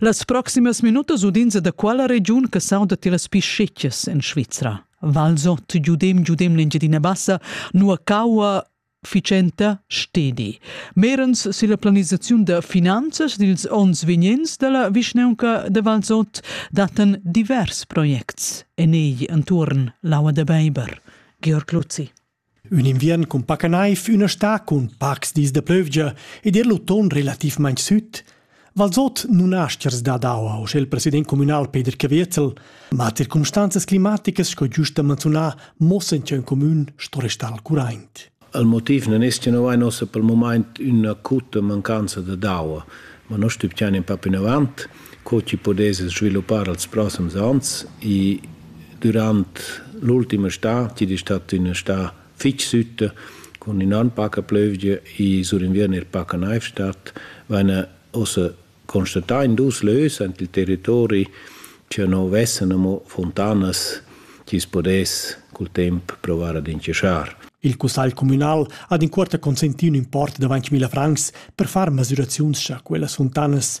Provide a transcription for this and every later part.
Las proximas minutas udins da quella regiun che sauda ti las piscettas en Svizra. Valsot, giudem, giudem l'Engiadina Bassa, nua caua ficenta stedi. Merens silla planisaziun da finanzas dils onns vegnents dalla vischnaunca de Valsot daten divers projects en ei entuorn l'aua de Beiber. Georg Luzzi. Ün inviern cun paca naiv, üna stà cun pacs dis da plövgia ed eir l'uton relativmaing süd. Valsot nun ha aschers dad aua, uschè il president cumünal Peder Caviezel, ma circumstanzas climaticas sco giust da manzunar muossan cha ün cumün sto restar al curaint. Il motiv non es cha no vain ossa pel mumaint üna acuta mancanza dad aua, ma no stübgiain ün pa plinavant. co chi pudess sviluppar als prossems ans i dürant l'ultima stà chi'd es stat üna stà fich sütta cun innan paca plövgia i sur inviern er paca naiv stat vaina ussa constatà in dus lös ant il territori cha no vessan amo funtanas chi's pudess cul temp provar ad inchaschar. Il cussagl cumünal ha d'incuorta consentì ün import d'avant 1000 francs per far masüraziuns cha quellas funtanas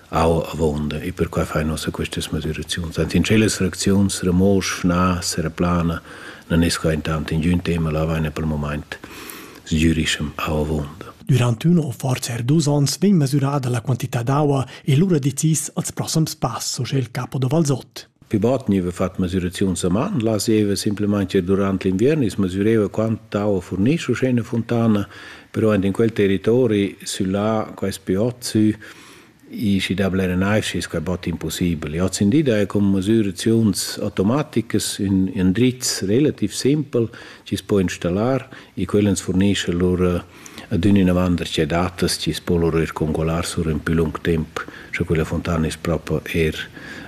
au avonda e per quai fai nossa questas moderaziuns. Ant in celas reacziuns remosch, na, sereplana, non esco intant in giun tema la vaina per moment sgürischem au avonda. Durant uno o forse er dus ons vegn mesurada la quantità d'aua e lura decis als prossams pass, so il capo da Valsot. Pi bot gniva fat masüraziuns a man, laseva simplamaing ir durant l'inviern, i's masüreva quant tau furnisce usché üna funtana, però aint in quel territori süllà, quais pi ot sü, i schi da blera naiv schi es quai bot impussibel. Hoz in di daja cun masüraziuns automaticas ün ün drizz relativ simpel chi's po installar e quel ans furnischa lur Adün inavant da che datas chi's po lura ir congualar sur ün pü lung temp, scha quella funtana es propa eir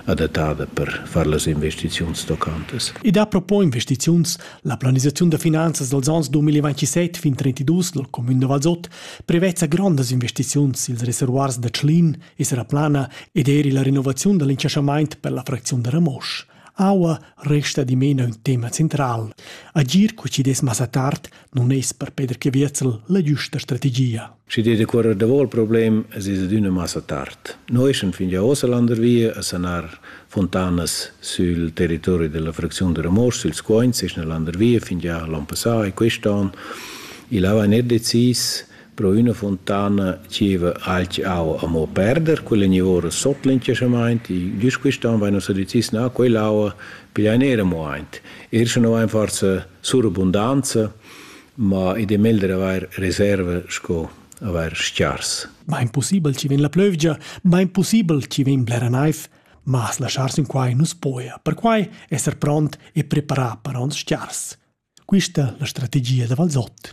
adattada per far las investiziuns tocantas. I dà propo investiziuns. La planisaziun da finanzas dals ans 2027 fin 2032 dal cumün da Valsot prevezza grondas investiziuns. Ils reservoirs da Tschlin es era plana ed eir illa renovaziun da l'inchaschamaint per la fracziun da Ramosch. Aua resta dimena ün tema central. Agir co chi dess massa tard non es per Peter Caviezel la giusta strategia. Schi dir decuorrer davò il problem es es adüna massa tard. Noi sun fin già ossa landervia a sanar fontanas sul territori della fracziun de Ramos, sul Scoins, es na landervia fin già l'an passà e quest'an. Il ava net decis Pro üna fontana zieva alch aua amo perder, quella gnivora sot l'incasamaint, güst quist'an vaina sudizis na quell'aua, pigliain eir amo aint. Eir sche no vain forsa surabundanza, ma id è meglder avair reserva sco avair s-chars. Bain pussibel chi vegn la plövgia, bain pussibel chi vegn blera naiv, ma as laschar sün quai nu's poja, perquai esser pront e preparà per ons s-chars. Quista la strategia da Valzot.